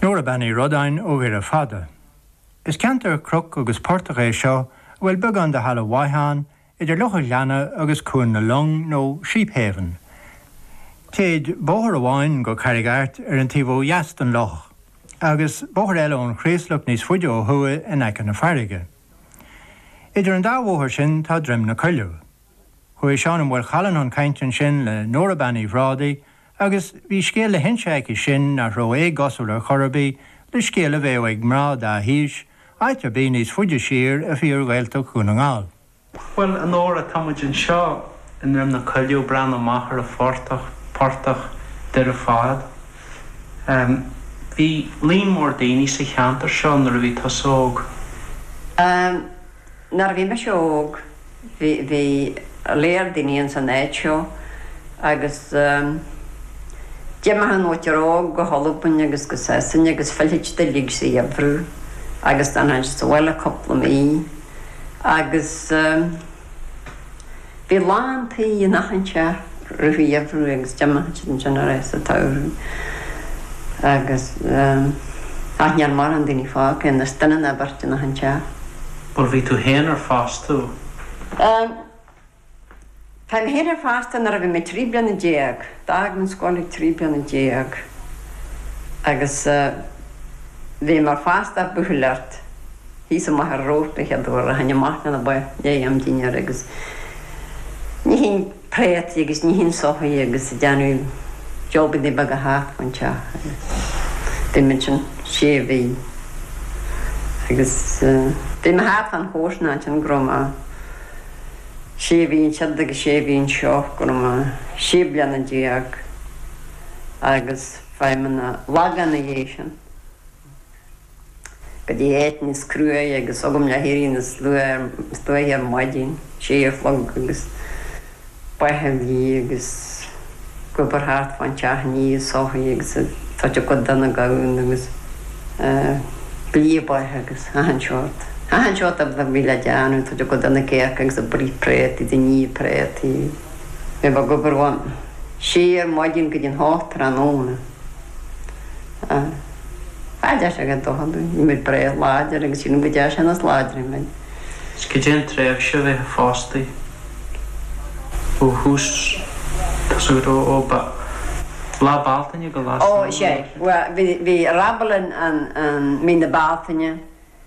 Nóra Bean Uí Rodáin ó Dhoire Fada. Is ceantar cnoc agus portach é seo a bhfuil beagán de thalamh mhaith ann idir Loch an Ghleanna agus Cuan na Long nó Sheephaven. Téid bóthar amháin go Carraig Airt ar an taobh ó dheas den loch, agus bóthar eile ón Chraoslach níos faide ó thuaidh in aice na farraige. Idir an dá bhóthar sin tá Droim na Coilleadh. Chuaigh Seán Ó Maolchalann chun cainte ansin le Nóra Bean Uí Bhrádaigh Agus bhí scéal le hinse aici sin nach raibh éagosúil ar chor ar bith le scéal a bheadh ag mná dá haois, áit ar bith níos faide siar i bhfíor-Ghaeltacht Dhún na nGall. Bhuel, a Nóra, tá muid anseo i nDroim na Coilleadh, ag breathnú amach ar an phortach, Portach Dhoire Fad. Bhí líon mór daoine sa cheantar seo nuair a bhí tusa óg. Nuair a bhí mise óg, bhí, bhí léar daoine ins an áit seo agus d'imigh an mhuintir óg go hAlbain agus go Sasana agus phillfeadh siad uilig sa gheimhreadh agus d'fhanfadh siad sa bhaile cúpla mí agus. Bhí lán tí in achan teach i rith an gheimhridh agus d'imeodh siad ansin arís sa tsamhradh agus ach níl mórán daoine fágtha anois, duine nó beirt in achan teach. Bhuel, bhí tú féin ar fostú. An, chuaigh mé féin ar fostú nuair a bhí mé trí bliana déag, d'fhág mé an scoil ag trí bliana déag agus bhí mé ar fostú ag buachailleacht, Thíos amuigh ar ród an chéad uair a tháinig amach mé le bheith ag déanamh dinnéara agus níochán préataí agus níochán soithí agus déanamh jabannaí beaga thart fán teach agus bhí mé ansin sé mhí agus bhí mé thart fán chomharsanacht ansin go raibh mé sé mhí ansiúd agus sé mhí anseo go raibh mé sé bliana déag agus chuaigh mé chun an Lagáin ina dhiaidh sin. go dtí áit níos cruaidhe agus agam le héirí níos luaithe ar maidin, sé a chlog, agus bheith ag blí agus ag obair thart fán teach ag ní soithí agus ag tabhairt a gcuid do na gamhna agus ag blí ba agus achan seort, achan seort a bhí le déanamh, ag tabhairt a gcuid do na cearca agus ag bruith préataí is ag ní préataí, bheith ag obair ón sé ar maidin go dtí an hocht tráthnóna. Cha dtearn sé a dhath dochair dúinn. Bhí muid breá láidir agus sílim go dtearn sé níos láidre muid. Is caidé an tréimhse a bheifeá fostaithe ó thús tosaigh go dtí ó Lá Bealtaine go Lá Samhna. Ó, is é. Bhuel, bhí rabble ann i mí na Bealtaine.